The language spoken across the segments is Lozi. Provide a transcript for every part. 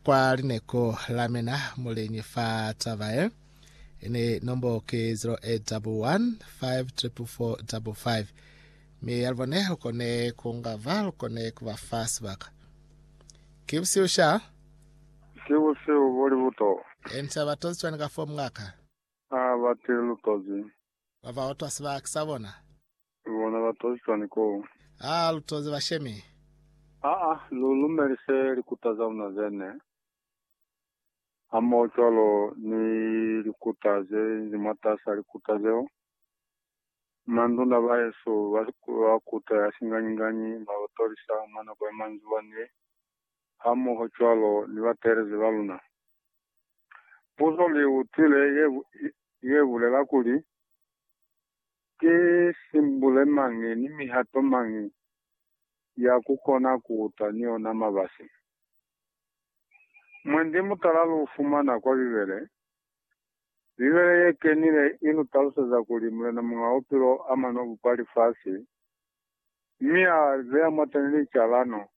Kwa lineko la mina muliñi fa taba ye, ini nombo ki 0815445555, mi yalubone lukone kungava lukone kuba fa sibaka. Ki busihu sha? Ki busihu bo libuto. Ini sa batozi cwani ka fo mngaka? Ha batile lutozi. Ba ba otwa sibaki sa bona. Ki bona ba tozi cwani koo? Aa, lu tozi bashemi. Aa, lu lumelise likuta za luna zene, hamoho cwalo ni likuta ze nzi mwatas'a likuta zeo. Manduna bahesu ba ba kuta ya singanyi-nganyi ba lu tolisa mwa nako ya manzwiwa ni hamoho cwalo ni bateelezi ba luna. Puzo li utwile ye, ye bulela kuli, Ki simbule mañi ni mihato mañi ya ku kona ku uta ni ona mabasi? Mwendi mutala lu fumana kwa Bibele. Bibele ye kenile i lu taluseza kuli Mulena Muñ'a Bupilo a mano bupa lifasi, mi a li beya mwateni licalano,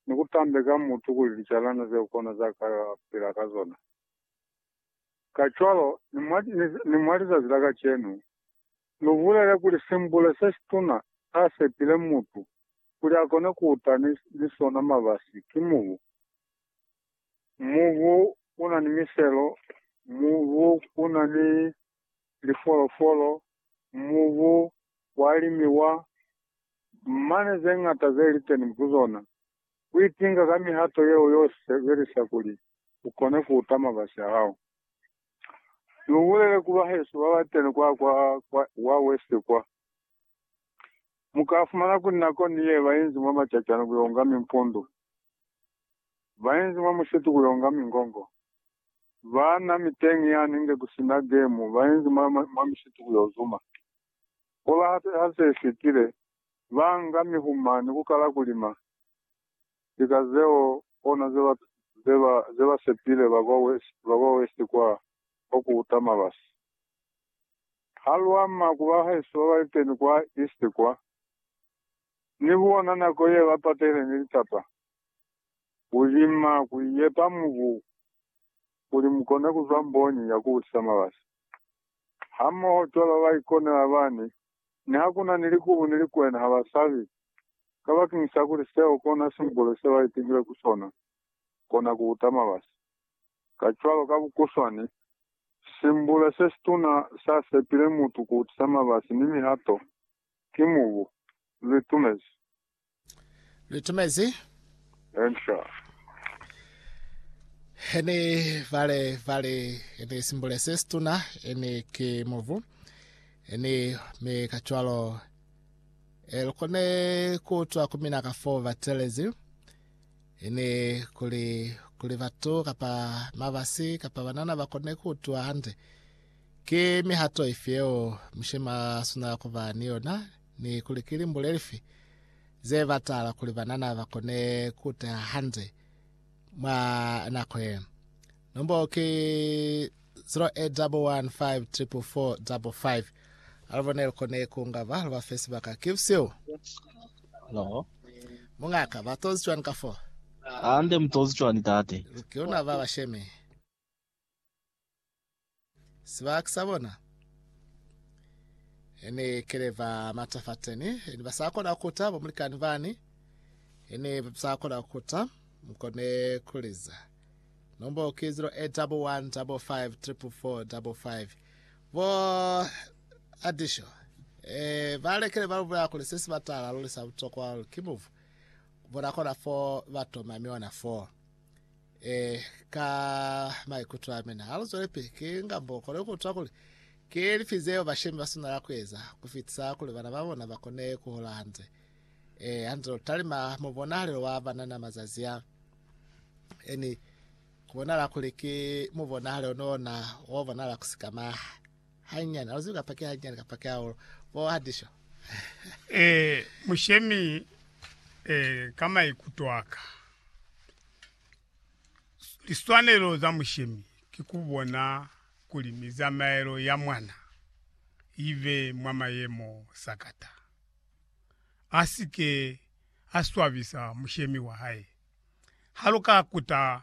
ni ku tambeka mutu kuli licalano zeo kona za ka pila ka zona. Kacwalo, ni mwa, ni, ni mwa lizazi la kacenu, lu bulele kuli simbule se situna sa sepile mutu kuli akone kuta ni, ni sona mabasi, ki mubu. Mubu una ni miselo, mubu una ni lifolofolo, mubu wa limiwa, mane zeñata zeli teni ku zona. Kuitinga ka mihato yeo yo sebelisa kuli ukone kuuta mabasi ahao. Ni ubulele ku bahesu babateni kwa kwa kwa wa west kwa. Mukaafumana kuli nako ni ye bainzi mwa macacani kuyo nga mimpundu, bainzi mwa musitu kuyo nga mingongo, baana miteñi yani nge kusina gemu, bainzi mwa mwa misitu kuyo zuma. Koba hape ha se fitile, ba nga mihuma ni kukala kulima. Lika zeo kona ze ba sepile ba kwa west kwa, kwa ku uta mabasi. Ha lu ama ku bahaeso ba baeteni kwa east kwa, ni bona nako ye ba patehile ni litata, ku lima, ku iyepa mubu kuli mu kone ku zwa mbonyi ya ku butisa mabasi. Hamoho cwalo ba ikonela bani Nihakuna ni likubu ni likwena habasabi, kabakini sa kuli seo kona simbolo se baitekile ku sona, kona kuuta mabasi. Kacwalo, ka bukuswani, simbula sesituna sa sepile mutu kuutisa mabasi ni mihato ki mubu, lu itumezi. Luitumezi. Enca. Ene vale vale ene simbule se situna ene ki muvu ene mi kacwalo e lukone kuutwa ku mina ka fo batelezi ene kuli kuli batu kapa mabasi kapa banana ba kone kuutwa hande ki mihato ifi yeo mishema suna kuba ni yona ni kuli ki limbule lifi ze batala kuli banana ba kone ku teha hande mwa nako ye. Nombolo ki 0811544455. Alubo ne lu kone ku nga ba lu ba fe sibaka. Ki busihu. Hello. Mungaka, ba tozi cwani ka fo? Hande, mu tozi cwani, Tate? Ki luna ba bashemi. Sibaka sa bona ene kele ba matafateni ene ba sa kona kuta ba mulikani bani ene ba sa kona kuta mkone kuliza nombo ke 08 double 1 double 5 triple 4 double 5 bo adisho eh ba lekele ba lubula kule se sibatala lule sa butokwa ke muvu bona kona 4 batoma miona 4 eh, ka maikuto a mina aluzwelepe ke ngambo kona ukutwa kuli ke lifi zeo bashemi basunela kueza kufitisa kuli bana ba bona bakone kuhola hanze eh, hanze lutalima mubonahalelo wa banana mazazi a eni kubonala kuli ke mubonahalelo nona wabonala kusikamaha Hanyani, ha lu zibi kapa ki hanyani kapa ki hahulu. Bo Hadisho. Ee, mushemi, ee, ka maikuto aka, liswanelo za mushemi ki ku bona kuli mizamaelo ya mwana ibe mwa mayemo sakata, a si ke a swabisa mushemi wa hae. Ha lu ka kuta